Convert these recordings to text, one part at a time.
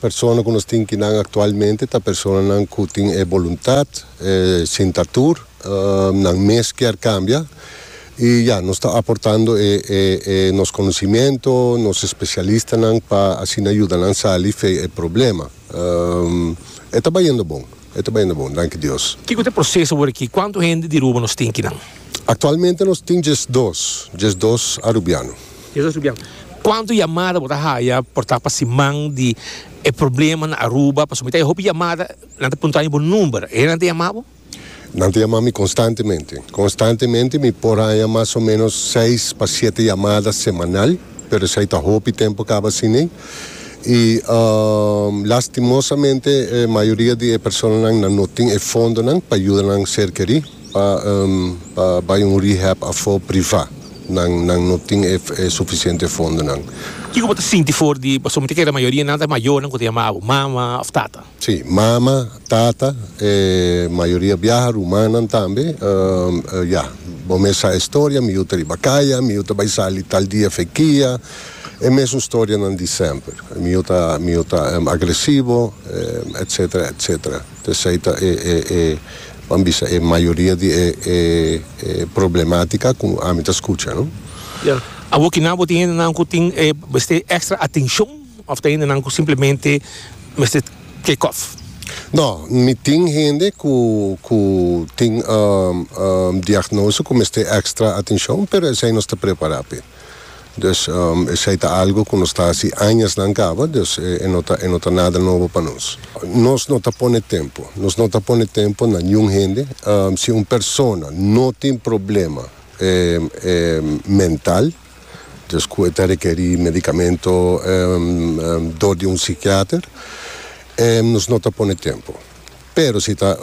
Persona ku nos tin ki nan aktualmente ta personanan ku tin e boluntat, e sinta tur, nan mes kier kambia i ya nos ta aportando e nos konosimiento, nos espesialistanan pa asina yuda nan sali fei e problema. E ta bayendo bon, e ta bayendo bon, danki Dios. Kiko ta e proseso wor aki? Kuantu hende di Aruba nos tin ki nan? Aktualmente nos tin djesdos, djesdos arubiano. Cuanto yamada bo ta haya por ta pa siman di e problema na Aruba? Pasobra mi ta haya hopi yamada, nan ta puntra mi bo number. E nan ta yama bo? Nan ta yama mi constantemente. Constantemente mi por haya mas o menos seis pa siete yamada semanal, pero esai ta hopi tempo caba asina. Y lastimosamente e mayoria di e personanan nan no tin e fondonan pa yuda nan ser keri pa bay un rehab afo priva. Nan nan no tin e e suficiente fondonan. Kico bo ta sinti for di pasobra mi ta kere la mayoria nan ta mayornan cu ta yama abo mama of tata? Si, mama, tata, e mayoria biaha, rumannan tambe. Ya, bo mes sa e storia, mi yu ta riba caya, mi yu ta bay sali tal dia fe kia, e mesun storianan di semper. Mi yu ta mi yu ta agresivo, etcetera, etcetera. P'esei ta e e e ban bisa e mayoria di e e e problematica cu ami ta scucha, no? Ya. Awor ki nan bo tin hendenan cu tin e mester extra atencion of ta hendenan cu simplemente mester take off? No, mi tin hende cu cu tin diagnose cu mester extra atencion, pero esei nos ta prepara p'e. Dus esei ta algu ku nos ta hasi añasnan kaba, dus e no ta e no ta nada nobo pa nos. Nos no ta pone tempu, nos no ta pone tempu na niun hende. Si un persona no tin problema mental, dus ku e ta rekerí medikamentu dor di un sikiater, nos no ta pone tempu. Pero si ta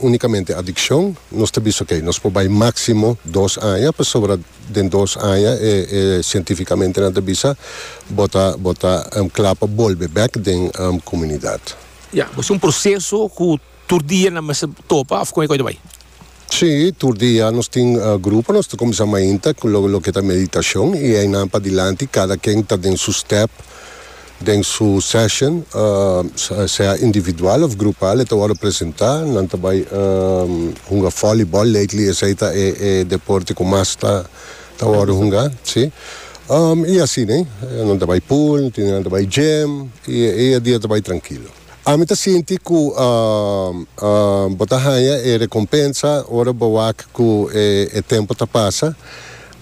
unikamente adikshon, nos ta bisa oke, nos por bai máksimo dos aña pasobra den dos aña e e sientífikamente nan ta bisa bo ta bo ta kla pa bolbe bèk den komunidat. Ya, bo es un proseso ku tur dia nan mester topa òf kon e kos ta bai? Sí, tur dia nos tin grupo, nos ta kuminsá mainta ku lo loke ta meditashon i einan padilanti kada ken ta den su stèp den su sèshon, sea individual òf grupal e ta wòrdu presentá. Nan ta bai hunga fòlibòl, lately esei ta e e deporte ku mas ta ta wòrdu hungá, sí. I asina nan ta bai pool, nan tin dia nan ta bai gym i e dia ta bai trankilo. Ami ta sinti ku bo ta haña e rekompensa ora bo wak ku e tempu ta pasa,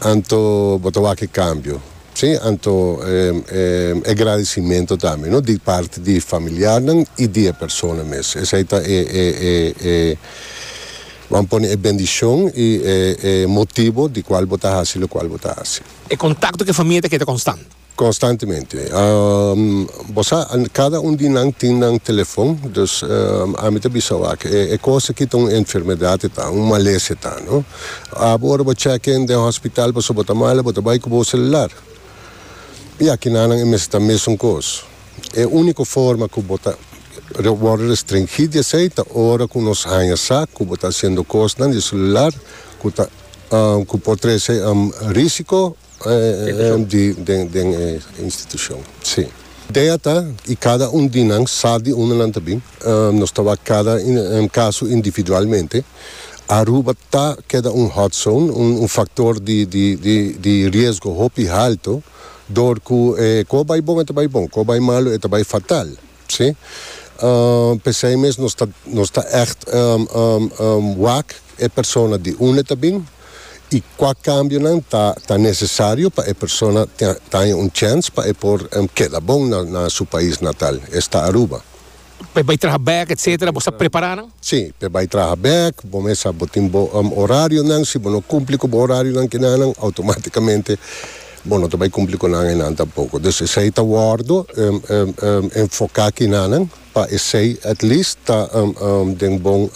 anto bo ta wak e kambio, si, anto e gradisimentu tambe, no di parti di familiarnan i di e persona mes. Esei ta e, bo a pone e bendishon i e motibu di kual bo ta hasi lokual bo ta hasi. E kontakto ku e famia ta keda konstant. Constantemente. Bo sa, cada un di nan tin nan telefon, dus ami ta bisa wak, e cos aki ta un enfermedad e ta, un malesa e ta, no? Abo ora bo check in den hospital pasobra bo ta mal, bo ta bay cu bo celular. Y aki nannan e mester ta mesun cos. E unico forma cu bo ta worde restringí di esey ta ora cu nos haya sa cu bo ta haciendo cosnan di e celular cu ta, cu por trece risico. Den e institucion si. Idea ta y cada un di nan sa di unda nan ta bin. Nos ta wak cada caso individualmente. Aruba ta keda un hot zone, un factor di riesgo hopi halto, door cu e cu a bay bon e ta bay bon, cu a bay malo e ta bay fatal. Sí. P'esei mes nos ta nos ta ègt wak e persona di unda e ta bin i kua kambionan ta ta nesesario pa e persona ta ta haña un chèns pa e por keda bon na na su pais natal, esta Aruba. P'e bai traha bèk etsetera, bo sa prepará nan? Sí, p'e bai traha bèk, bo mes sa bo tin bo orarionan, si bo no kumpli ku bo orarionan kinanan outomátikamente. Bo no ta bai cumpli cu nan enan tampoco. Dus esey ta wordo enfoca kinanan pa esey at least ta den bon,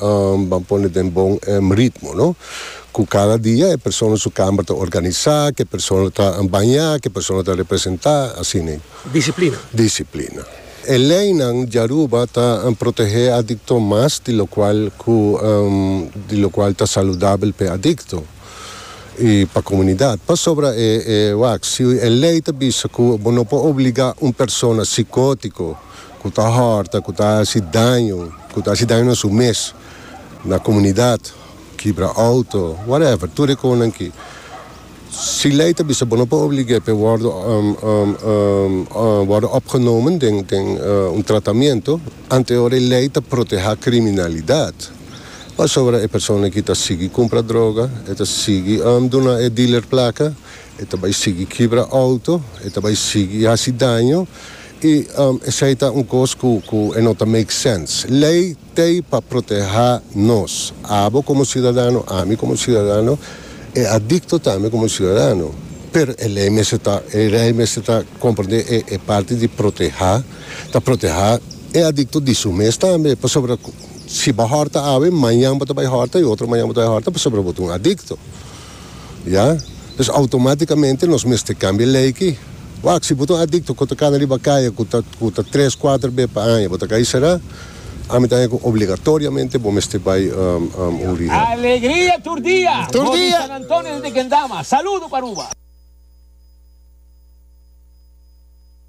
ban pone den bon ritmo, no? Cu cada dia e persona su kamer ta organisa, cu e persona ta baña, cu e persona ta representa, así nei. Disciplina. Disciplina. E leynan di Aruba ta protehe e adicto mas di locual cu di locual ta saludabel pa e adicto. i pa komunidat. Pasobra e e wak, si e lei ta bisa ku bo no por obligá un persona sikótiko ku ta hòrta, ku ta hasi daño, ku ta hasi daño na su mes, na komunidat, kibra outo, whatever, tur e konan ki, si lei ta bisa bo no por oblig'é pa e wòrdu wòrdu opgenomen den den un tratamentu, Anteor e lei ta protehá kriminalidat, pasobra e persona ki ta sigui kumpra droga, e ta sigui duna e dealer plaka, e ta bai sigui kibra outo, e ta bai sigui hasi daño, i esei ta un kos ku e no ta make sense. Lei t'ei pa protehá nos, abo komo siudadano, ami komo siudadano, e adikto tambe komo siudadano. Pero e lei mester ta, e lei mester ta komprendé e parti di protehá. Ta protehá e adikto di su mes tambe, pasobra ku si bo hòrta awe, mañan bo ta bai hòrta i otro mañan bo ta bai hòrta pasobra bo ta un adikto. Ya. Pues outomátikamente nos mester kambia lei ki. Wak, si bo ta un adikto ku ta kana riba kaya ku ta ku ta tres, kuater be pa aña bo ta kai será, ami ta haña ku obligatoriamente bo mester bai un rehab. Alegria tur dia! Tur Bobby dia! San Antonio desde Kendama. Saludo pa Aruba.